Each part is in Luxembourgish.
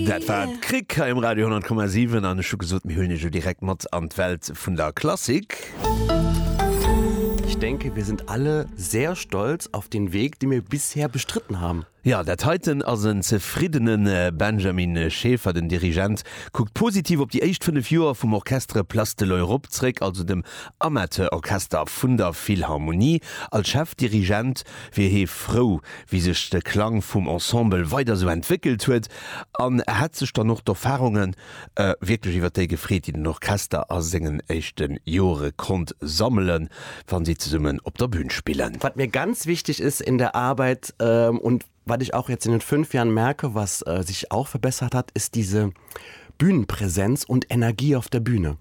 Dat war d'Krick hei um Radio 100,7 an ech hu gesot, mir huelen iech elo direkt mat an d'Welt vun der Klassik. Ich denke, wir sind alle sehr stolz auf den Weg, den wir bisher bestritten haben. Ja, dat heiten ass en zefriddene Benjamin Schaefer. Den Dirigent kuckt positiv op déi éischt fënnef Joer vum Orchestre Place de l'Europe zréck, also dem Amateurorchester vun der Philharmonie. Als Chefdirigent wier hee frou, wéi sech de Klang vum Ensemble weider sou entwéckelt huet an hätt sech dann och d'Erfarunge wierklech iwwer déi gefreet, déi den Orchester a sengen éischte Jore konnt sammelen, wa si zesummen op der Bün spillen. Was mir ganz wichtig ist in der Arbeit und was ich auch jetzt in den fünf Jahren merke, was sich auch verbessert hat, ist diese Bühnenpräsenz und Energie auf der Bühne.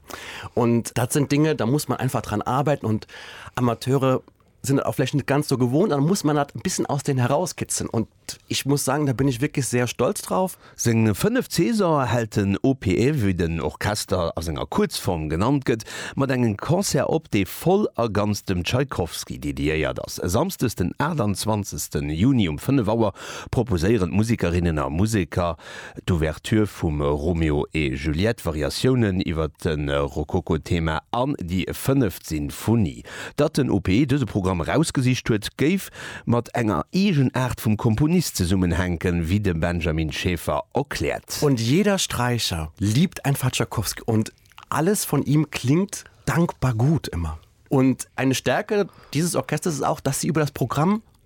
Und das sind Dinge, da muss man einfach dran arbeiten und Amateure sinn dat och vläicht net ganz esou gewohnt an da muss man dat e bissen aus deenen herauskitzen und ich muss sagen, da bin ich wirklich sehr stolz drauf. Seng fënnef César hält den OPE, wéi den Orchester a senger Kuerzform genannt gëtt, mat engem Concert op, dee voll a ganz dem Tschaikowski dediéiert ass. E Samsdes, den 28. Juni um 5 Auer proposéieren d'Musikerinnen a Museker, d'Ouverture vum Romeo et Juliette, Variatiounen iwwer de Rokoko-Thema an déi fënneft Sinfonie. Datt den OPE dëse Programm erausgesicht huet, géif mat enger Eegenaart vum Komponist zesummenhänken, wéi de Benjamin Schäfer erkläert. Und jeder Streicher liebt einfach Tschaikowski und alles von ihm klingt dankbar gut immer. Und eine Stärke dieses Orchesters ist auch, dass sie über das Programm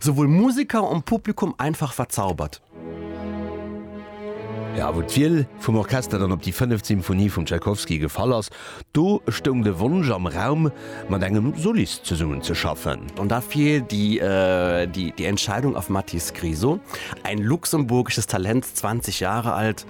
Souwuel Musiker en Publikum einfach verzaubert. A wou d'Wiel vum Orchester dann op déi fënneft Symphonie vum Tchaikovsky gefall ass, do stoung de Wonsch am Raum, mat engem Solist zesummen ze schaffen. An da fiel die Entscheidung auf Mathis Griso, ein luxemburgisches Talent, 20 Jahre alt.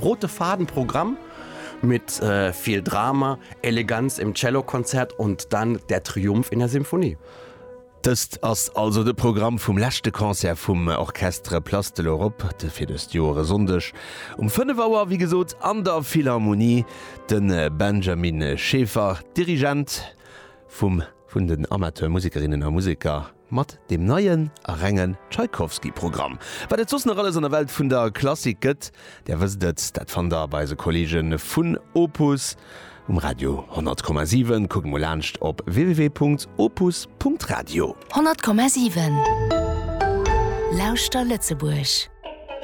Rote Faden Programm mit viel Drama, Eleganz im Cellokonzert und dann der Triumph in der Symphonie. Dëst ass also de Programm vum leschte Concert vum Orchestre Place de l'Europe fir dëst Joer. E Sonndeg um 5 Auer, wéi gesot, an der Philharmonie. De Benjamin Schaeffer, Dirigent vum vun den Amateurmusikerinnen a museker. Mat dem neien a renge Tschaikowski-Programm, wat et soss nach alles an der Welt vun der Klassik gëtt, Där wësst et, dat fannt der bei eise Kolleege vun Opus um Radio 100 Komma 7. Kuckt mol laanscht op www.opus.radio. 100 Komma 7 Lauschter Lëtzebuerg!